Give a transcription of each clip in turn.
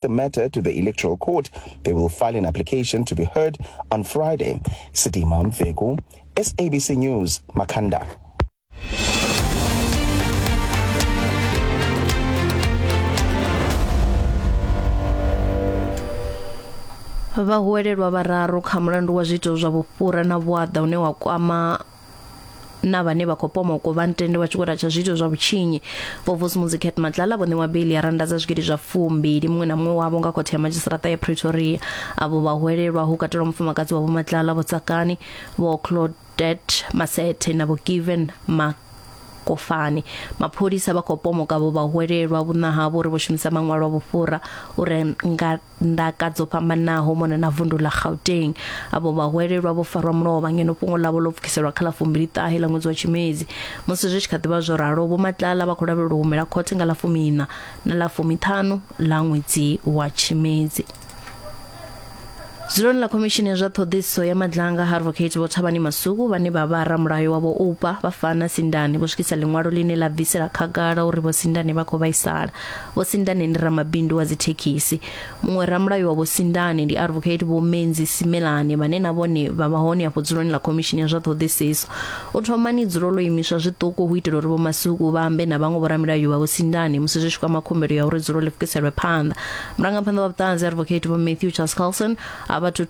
the matter to the Electoral Court. They will file an application to be heard on Friday. Sidima Mfeku, SABC News, Makanda. vhahuwelelwa vhararu kha mulandu wa zwiito zwa vhufhura na vhuaḓa une wa kwama na vhane vha khou pomokwa vha ntende vha tshi khou ratsha zwiito zwa vhutshinyi vho vusimuzi cat matlala vho ṋewa beli ya randa dza zwigidi zwa fumbili muṅwe na muṅwe wavho nga khothe ya madzhisiṱaraṱa ya pretoria avho vhahwelelwa hu katelwa mufumakadzi wa vho matlala vho tsakani vho claudet masete na vho given mak kofani mapholisa vha khou pomoka vho vhahwelelwa vhunna havho uri vho shumisa maṅwalo a vhufhura u renga ndaka dzo fhambanaho mona na vundu ḽa Gauteng. Avho vhahwelelwa vho farwa mulovha ngeno fhungo ḽavho ḽo pfukiselwa kha ḽa fumbili ṱahe ḽa ṅwedzi wa Tshimedzi. Musi zwi tshi kha ḓivha zwo ralo, Vho Matlala vha khou lavhelelwa u humela khothe nga ḽa fumiiṋa na ḽa fumiṱhanu ḽa ṅwedzi wa Tshimedzi. Dzuloni ḽa khomishini ya zwa ṱhoḓisiso ya madlanga ha advocate vho Thabani Masuku vhane vha vha ramulayo wa vho Oupa vha fana Sindani vho swikisa ḽiṅwalo ḽine ḽa bvisela khagala uri vho Sindani vha khou vhaisala Vho Sindane ndi ramabindu wa dzithekhisi. Muṅwe ramulayo wa Vho Sindane ndi Advocate Vho Menzi Simelane vhane na vhone vha vha hone afho dzuloni ḽa khomishini ya zwa ṱhoḓisiso. U thomani dzulo ḽo imiswa zwiṱuku hu itela uri Vho Masuku vha ambe na vhaṅwe vhoramilayo vha Vho Sindane musi zwi tshi kwama khumbelo ya uri dzulo ḽi pfukiselwe phanḓa. Murangaphanḓa wa vhuṱanzi Advocate Vho Matthew Charles Carlson a vha thu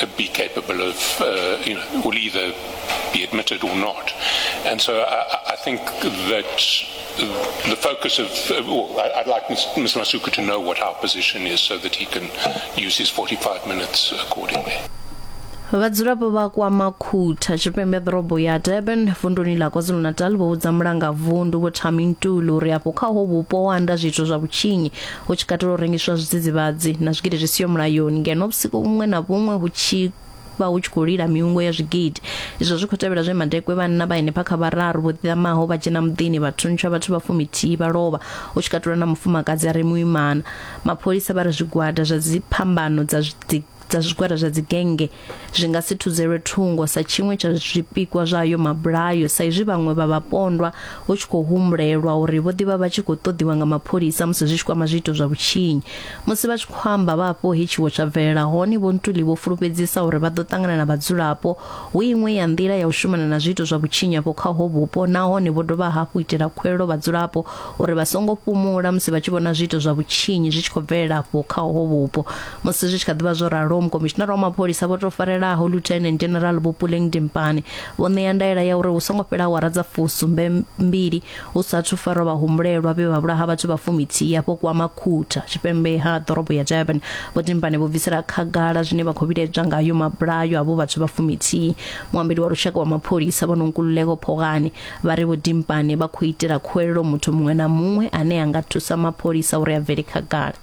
uh, be capable of, uh, you know, will either be admitted or not. And so I, I think that the focus of, uh, well, I'd like Mr. Masuku to know what our position is so that he can use his 45 minutes accordingly. vhadzulapo vha kwa makhutha tshipembe ḓorobo ya durban vunduni ḽa kwazulu-natal vho vhudza mulanga vundu vho thamintulu uri afho kha ho vhupo ho anda zwithu zwa vhutshinyi hu tshi katela u rengiswa zwidzidzivhadzi na zwigidi zwi siho mulayoni ngeno vhusiku vhuṅwe na vhuṅwe hu tshi vha hu tshi khou lila miungo ya zwigidi izwo zwi khou tevhela zwe madekwe vhanna vha henefha kha vhararu vho ḓiḓamaho vha dzhena muḓini vha thuntsha vhathu vha fumithihi vha lovha hu tshi katelwa na mufumakadzi a re muimana mapholisa vha ri zwigwada zwa dziphambano dza zwi- dza zwigwada zwa dzigenge zwi nga si thudzelwe thungo sa tshiṅwe tsha zwipikwa zwa ayo mabulayo sa izwi vhaṅwe vha vhapondwa hu tshi khou humbulelwa uri vho ḓivha vha tshi khou ṱoḓiwa nga mapholisa musi zwi tshi kwama zwiito zwa vhutshinyi musi vha tshi khou amba vha afho he tshiwo tsha bvelela hone vho ntuli vho fulufhedzisa uri vha ḓo ṱangana na vhadzulapo hu iṅwe ya nḓila ya u shumana na zwiito zwa vhutshinyi afho kha ho vhupo nahone vho dovha hafhu itela khuwelelo vhadzulapo uri vha songo fhumula musi vha tshi vhona zwiito zwa vhutshinyi zwi tshi khou bvelela afho kha ho vhupo musi zwi tshi kha ḓivha zwo ralo mukomishinara wa mapholisa vho tou farelaho lieutenant general vhopuleng dimpane vho ṋea ndaela ya uri hu songo fhela awara dza fusumbe mbili hu sathu farwa vhahumbulelwa vhe vha vhulaha vhathu vha fumithihi afho kwama khutha tshipembe ha ḓorobo ya durban vho dimpane vho bvisela khagala zwine vha khou vhiledza ngayo mabulayo avho vhathu vha fumithihi muambeli wa lushaka wa mapholisa vho nonkululeko phogani vha ri vho dimpane vha khou itela khuwelelo muthu muṅwe na muṅwe ane a nga thusa mapholisa uri a bvele khagala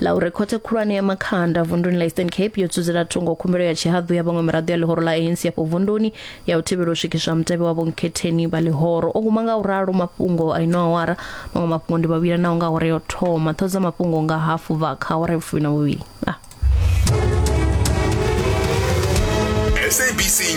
laure khothe khulwane ya makhanda vunduni la eastern cape yo dzudzela thungo khumbelo ya tshihaḓu ya vhaṅwe miraḓo ya ḽihoro ḽa anc afho vunduni ya u thivhela u swikiswa mutevhe wa vhonkhetheni vha ḽihoro o guma nga u ralo mafhungo a ino awara maṅwe mafhungo ndi vhavhilanaho nga awara yo thoma ṱho dza mafhungo nga hafu bva kha awara ya vhufumi na vhuvhili ah. SABC